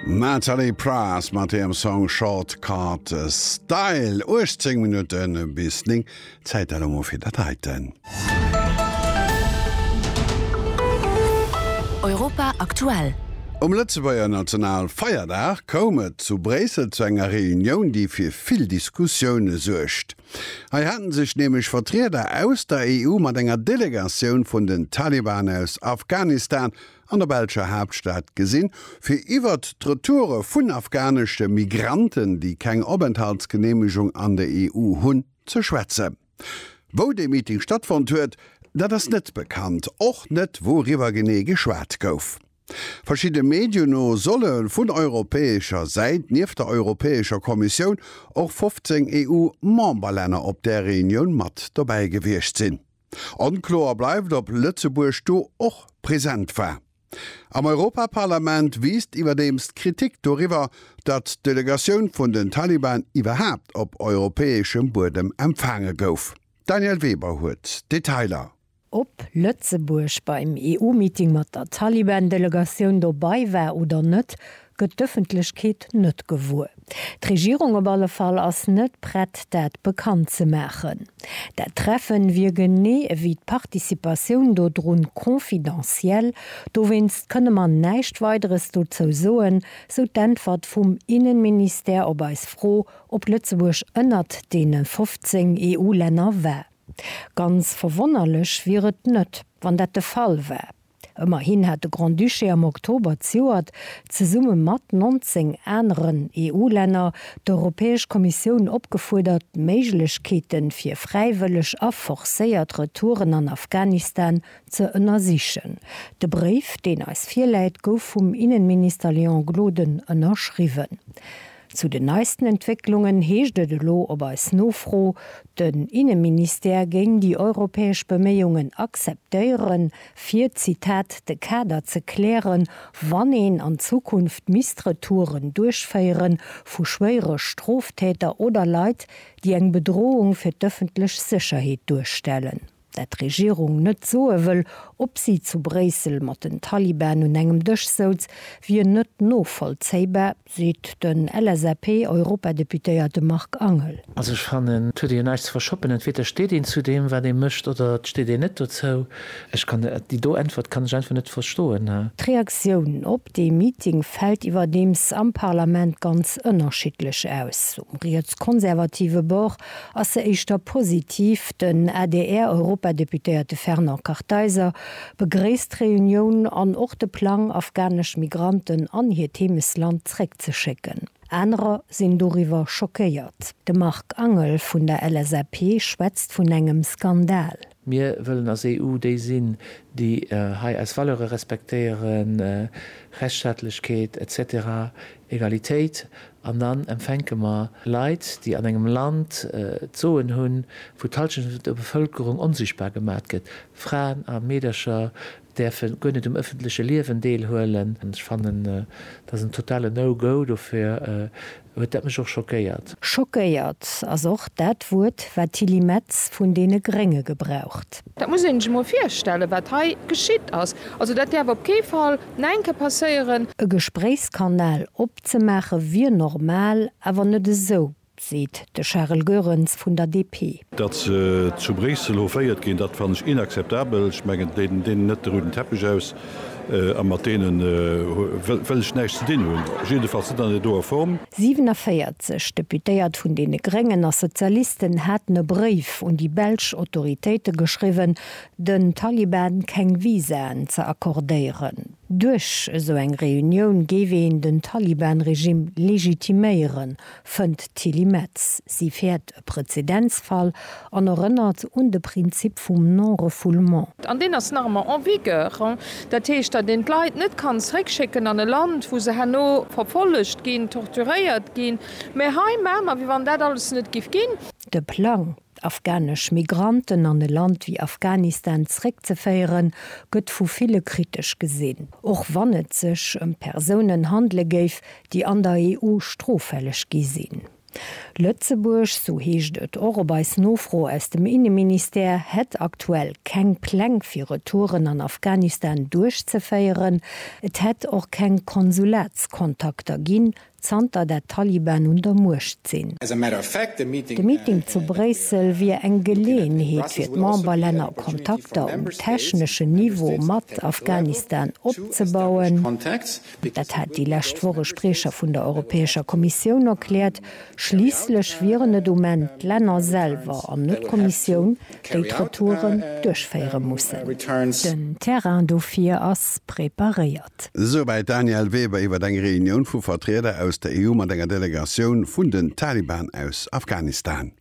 Nathalie Praas mat hirem Song Shortcut Style. 18 Minutten bis 9, Zäit elo mol fir dat heiten. Europa aktuell. Um Lëtzebuerger Nationalfeierdag koum et zu Bréissel zu enger Reunioun, déi fir vill Diskussioune suergt. Hei hate sech nämlech Vertrieder aus der EU mat enger Delegatioun vun den Taliban aus Afghanistan an der belscher Haaptstad gesinn, fir iwwert d'Retoure vun afghanesche Migranten, déi keng Openthaltsgeneemegung an der EU hunn, ze schwätzen. Wou dee Meeting stattfonnt huet, dat ass net bekannt, och net wouriwwer genee geschwat gouf. Verschidde Medien no solle vun europäescher Säit nieft der Europäescher Kommissioun och 15 EU-Memberlänner op där Reunioun mat dobäi gewiescht sinn. Onkloer bleift, ob Lëtzebuerg do och present war. Am Europaparlament wiisst iwwerdeems d'Kritik doriwwer, datt d'Delegatioun vun den Taliban iwwerhaapt op europäeschem Buedem empfaange gouf. D'Danièle Weber huet d'Detailer. Ob Lëtzebuerg beim EU-Meeting mat der Taliban-Delegatioun dobei war oder net, gëtt d'Ëffentlechkeet net gewuer. D'Regierung op alle Fall ass net prett dat bekannt ze maachen. Dat Treffen wier genee ewéi d'Participatioun dodrun confidentiel, dowéinst kënne mer näischt Weideres dozou soen, sou d'Äntwert vum Innenministère op eis Fro, ob Lëtzebuerg ënnert deene 15 EU-Länner war. Ganz verwonnerlech wier et net, wann dat de Fall war. Ëmmerhin hat de Grand-Duché am Oktober ziuert, zesumme mat 19 aneren EU-Länner, d'Europäesch Kommissioun opgefuerdert, d'Méiglechkeete fir fräiwëlleg a forcéiert Retouren an Afghanistan ze ënnersichen. De Bréif, deen eis virläit, gouf vum Innenminister Léon Gloden ënnerschriwwen. Zu den neisten Entwécklungen heescht et elo op eis Nofro, den Inneministère géing déi europäesch Beméiungen akzeptéieren, fir, Zitat, de Kader ze klären, wann een an Zukunft misst Retouren duerchféiere vu schwéiere Stroftäter oder Leit, déi eng Bedrohung fir d'ëffentlech Sécherheet duerstellen. dat d'Regierung net soe wëll, ob si zu Bréissel mat den Taliban un engem Dësch souz, wier net novollzéibar, seet den LSAP-Europadeputéierte Marc Angel. Also ech fannen, et huet ee jo näischt ze verschoppen. Entweder steet een zu deem, wat ee mécht, oder et steet een net dozou. Ech kann déi do Äntwert kann ech einfach net verstoen. D'Reaktioun op dee Meeting fält iwwerdeems am Parlament ganz ënnerschiddlech aus. Um rietskonservative Bord ass se éischter positiv. Den ADR-Europadeputéierte Fernand Kartheiser begréisst d'Reunioun an och de Plang, afghanesch Migranten an hiert Heemesland zeréckzeschécken. Anerer sinn doriwwer schockéiert. De Marc Angel vun der LSAP schwätzt vun engem Skandal. Mir wëllen als EU déi sinn, déi hei eis Valeure respektéieren, Rechtsstaatlechkeet, etc. Egalitéit. An dann empfänke mer Leit, déi an engem Land d'Soen hunn, wou d'Halschent vun der Bevëlkerung onsichtbar gemat gëtt, Fraen a Meedercher, däerfe guer net um ëffentleche Liewen deelhuelen. Ech fannen, dat ass en totale No-Go. Dofir huet dat mech och schockéiert. Schockéiert ass och dat Wuert, wat d'Tilly Metz vun deene Grénge gebraucht. Dat muss een sech emol virstellen, wat hei geschitt ass. Also, dat däerf op kee Fall no eng Kéier passéieren. E Gespréichskanal opzemaache wier normal, awer net esou. seet de Charel Goerens vun der DP. Datt se zu Bréissel hoféiert ginn, dat fannen ech inakzeptabel. Ech mengen, déi deenen net de rouden Teppech aus a mat deene wëll ech näischt ze dinn hunn, jiddefalls net an der doer Form. 47 Deputéiert vun deene Gréngen a Sozialisten haten e Bréif un déi belsch Autoritéite geschriwwen, den Taliban keng Visaen ze accordéieren. Duerch esou eng Reunioun géif een den Taliban-Regimm legitiméieren, fënnt d'Tilly Metz. Si fäert e Prezedenzfall an erënnert un de Prinzip vum Non-refoulement. An deen ass nach ëmmer en vigueur. Dat heescht, datt een d'Leit net kann zeréckschécken an e Land, wou se herno verfollegt ginn, torturéiert ginn. Mä hei maache mer, wéi wann dat alles net géif ginn. De Plang, d'afghanesch Migranten an e Land wéi Afghanistan zréckzeféieren, gëtt vu ville kritesch gesinn, och wann et sech ëm Persounen handele géif, déi an der EU stroffälleg gi sinn. Lëtzebuerg, sou heescht et och op eis Nofro aus dem Inneministère, hätt aktuell keng Pläng fir Retouren an Afghanistan duerchzeféieren. Et hätt och keng Konsulatskontakter ginn, zanter der Taliban un der Muecht sinn. De Meeting zu Bréissel wier eng Geleeënheet fir d'Memberlänner Kontakter um techneschen Niveau mat Afghanistan opzebauen. Dat hat déi lescht Woch e Spriecher vun der Europäescher Kommissioun erkläert. Schliisslech wieren et um Enn d'Länner selwer an net d'Kommissioun, déi d'Retouren duerchféiere mussen. Den Terrain dofir ass preparéiert. Ëmwelt. Souwäit d'Danièle Weber iwwer eng Reunioun vu Vertrieder aus der EU mat enger Delegatioun vun den Taliban aus Afghanistan.